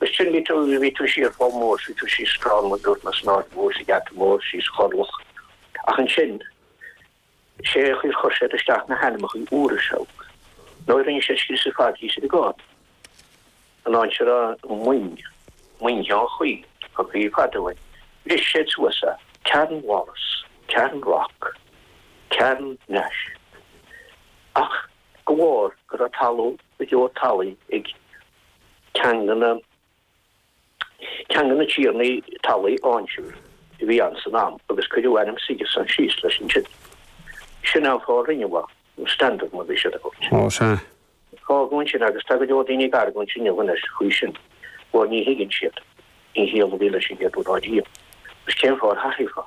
Is sin, bhí tú, bhí tú siar chomh mór, bhí tú síos scrann, a dúirt na snámh mhór sa gheata mór, síos Chorrloch. Ach ansin, sé a chuir, chuir siad isteach na hainmeachaí úra seo. Nó rinne siad scrios ar fad thíos ar an gCarn. An aimsir a, muin, muin Sheáin Chaoi, tá caoi ar fad uainn. Bhris siad suas é. Carn Wallace, Carn Rock, Carn Nash. Ach de bharr go raibh talamh go leor talaí ag. Teanga na tiarnaí talmhaí ansiúd a bhí ann san am agus cuireadh ainm Sigerson síos leis an teideal. Sin an fáth a rinneadh Mhaigh, nó Standog mar a bhí siad ag tabhairt air. Fágadh ansin agus tá go leor daoine ag argóint inniu anois faoi sin, mar ní thuigeann siad, an chiall a bhí leis an chéad uair riamh, agus cén fáth ar thaithífeá?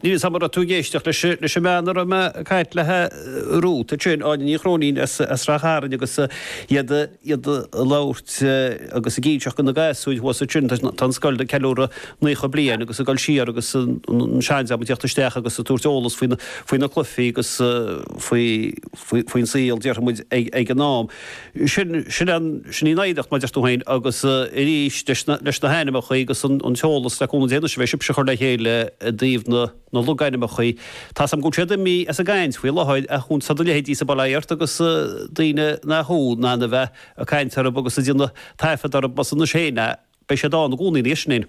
Níl's a'm an raibh tú ag éisteacht leis leis an mbean a raibh mé ag caint léithi romhat ansin, Áine Ní Chróinín as as Ráth Chairn agus iad iad ag labhairt agus ag inseacht go na gasúir thuas ansin tá tá an scoil ag ceiliúradh naocha bliain agus ag dul siar agus an seandream ag teacht isteach agus ag tabhairt eolas faoi na faoi na cluichí agus faoi faoi faoin saol déarfaidh muid ag ag an am. Sin, sin an, sin í an oidhreacht, mar a deir tú féin, agus arís, leis na, leis na hainmneacha agus an, an t-eolas, le cúnamh Dé anois, a bheidh sibhse ag cur le chéile i dtaobh na, na logainmneacha, tá's a'm go bhfuil siad imithe as an gcaint faoi láthair, ach tá do leithéidí-sa, bail ó Dhia ort, agus daoine nach thú, in ann a bheith ag caint orthu agus ag déanamh taifead orthu, más anois féin é, beidh siad ann i gcónaí anois, sin é an.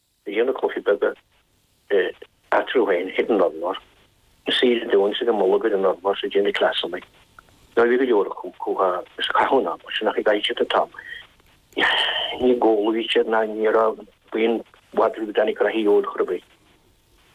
a dhéanamh cluichí beaga eatarthu féin, hit and run, mar is saoire dúinn is ar a mbolg ar an urlár ag déanamh cleasanna dá bhí go leor acu chucu is caitheadh an ama sin ach ag éirí titim tamall níor chodlaigh siad ná ní raibh puinn mhadraí ag Danny Craigie ar chor ar bith.